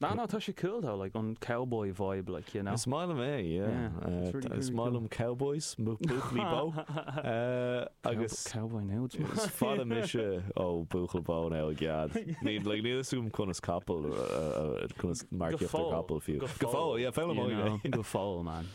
Ná ná tá sé cool though like an cowboy vibe like you know. Is maith liom é yeah it's really really cool. Is maith liom cowboys boot me bó agus cowboy now it's maith. Is fada mise ó bhuachaill bó now i gcead. Níl like níl fhios agam conas capall conas marcaíocht ar capall fiú. Go fóill yeah foghlaimeoidh mé é. Go fóill man.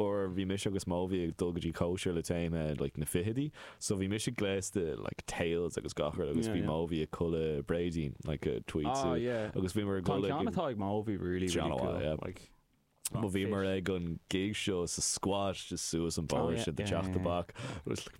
uair bhí mise agus Móibhí ag dul go dtí cóisir le téama like na fichidí so bhí mise gléasta like tails agus gach rud agus bhí Móibhí i gculaith bréidín like a tweed suit agus bhíomar ag culaith ceann atá ag Móibhí really really cool yeah like bhíomar ag an gig seo sa squash just suas an bóthar sa teach tábhairne was like